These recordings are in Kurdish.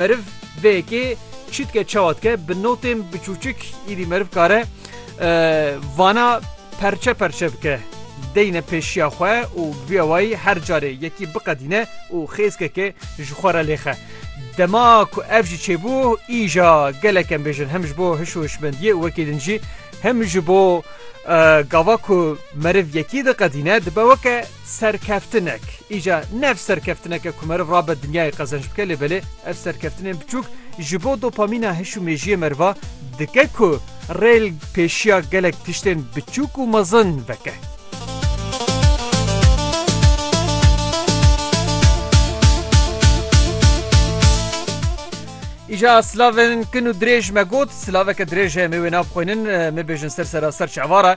Meriv vê yekê çi dike çawa dike bi notên biçûçik îdî meriv kare vana perçe perçe bike deyne pêşiya xwe û bi vî awayî her carê yekî biqedîne û xêzkekê ji xwe re lêxe. Dema ku ev jî çêbû îja gelek em bêjin hem ji bo hiş û hişmendiyê û wekî din jî hem ji bo gava ku meriv yekî diqedîne dibe weke Serkeftinek, îca ne ev serkeftinek e ku meriv rabe dinyayê qezenc bike lê belê ev serkeftinên biçûk ji bo dopamîna hiş û mêjiyê meriva dike ku rêl pêşiya gelek tiştên biçûk û mezin veke. Îca silavên kin û dirêj me got, silaveke dirêj heye me wê nabixwînin, me bêjin ser seraser çavar e.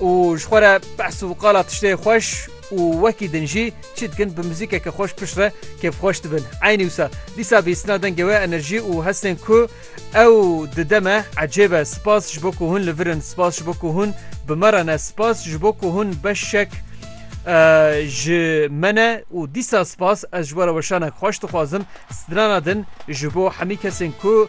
û ji xwe re behs û qala tiştê xweş û wekî din jî çî dikin bi muzîkeke xweş pişt re kêfxweş dibin. Eynî wisa dîsa bîstina dengê we enerjî û hestên ku ew dide me ecêb e. Spas ji bo ku hûn li vir in, spas ji bo ku hûn bi me re ne, spas ji bo ku hûn beşek ji me ne û dîsa spas ez ji we re weşanek xweş dixwazim strana din ji bo hemî kesên ku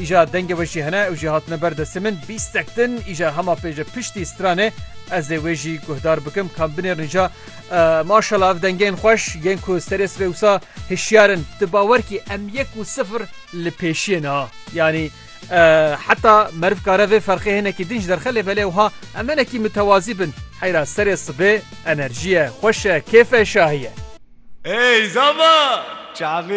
Îja dengê we jî hene, ew jî hatine ber destê min, bîstek din, îja hema pê ji piştî stranê, ez ê wê jî guhdar bikim, kan binêrin îja. Maşallah ev dengên xweş yên ku serê sibê wisa hişyar in, tu bawer kî em yek û sifir li pêşiyê ne ha. Yanî heta meriv kare vê ferqê hinekî din ji derxe lê belê wiha em hinekî mitewazî bin. Heyra serê sibê enerjiye, xweş e, kêfe, şahî ye. Ey zava! Çavê